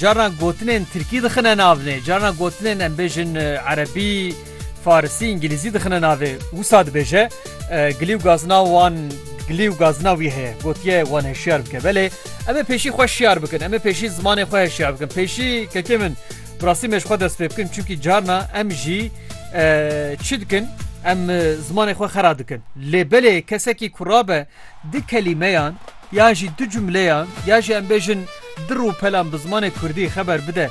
Carna gotinên tirkî dixine navnê, carna gotinên em bêjin erebî, farisî, îngîlîzî dixine navê. Wisa dibêje gilî û gazina wan gilî û gazina wî heye. Gotiye wan heşyar bike. Belê em ê pêşî xwe şiyar bikin, em ê pêşî zimanê xwe heşyar bikin. Pêşî kekê min bi rastî me ji xwe dest pê bikin çimkî carna em jî çi dikin em zimanê xwe xera dikin. Lê belê kesekî ku rabe du kelîmeyan yan jî du cumleyan yan jî em bêjin du rûpelan bi zimanê kurdî xeber bide,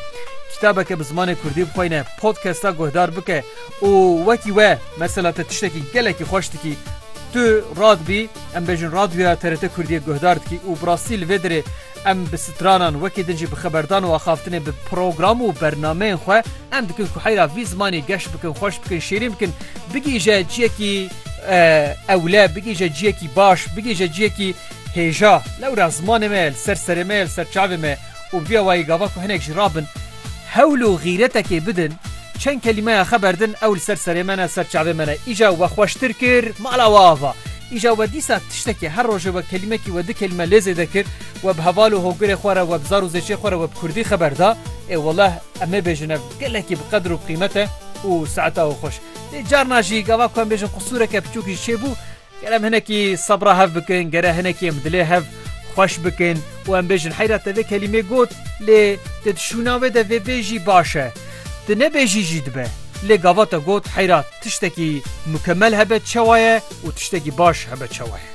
kitabeke bi zimanê kurdî bixweyne, podkesta guhdar bike û wekî we mesela te tiştekî gelekî xweş dikî, tu radbî em bêjin radyoya TRT Kurdiyê guhdar dikî û bi rastî li vê derê, Em bi stranan wekî din jî bi xeberdan û axaftinê bi program û bernameyên xwe em dikin ku heyra vî zimanî geş bikin, xweş bikin, şîrîn bikin, bigihîje ciyekî ewle, bigihîje ciyekî baş, bigihîje ciyekî hêja. Lewra zimanê me ye li ser serê me ye, li ser çavê me ye û bi vîya wayî gava ku hinek jî rabin, Hewl û xîretekê bidin, çend kelîmeya xe berdin ew li ser serê me ne, ser çavê me ne. Îja we xweştir kir, mala we ava. Îja we dîsa tiştekê, her rojê we kelîmekî we di kelîme lê zêde kir, we bi heval û hogirê xwe re, we bi zar û zêçê xwe re we bi kurdî xe berda. Ê weleh em ê bêjin ev gelekî bi qedir û bi qîmet e û saeta û xweş. Lê carna jî gava ku em bêjin qusûreke piçûk jî çêbû, Ger em hinekî sebra hev bikin, ger hinekî em dilê hev xweş bikin û em bêjin heyra te vê kelîmê got lê te di şûna wê de vê bêjî baş e. Tu nebêjî jî dibe. Lê gava te got heyra tiştekî mukemel hebe çewa ye û tiştekî baş hebe çewa ye.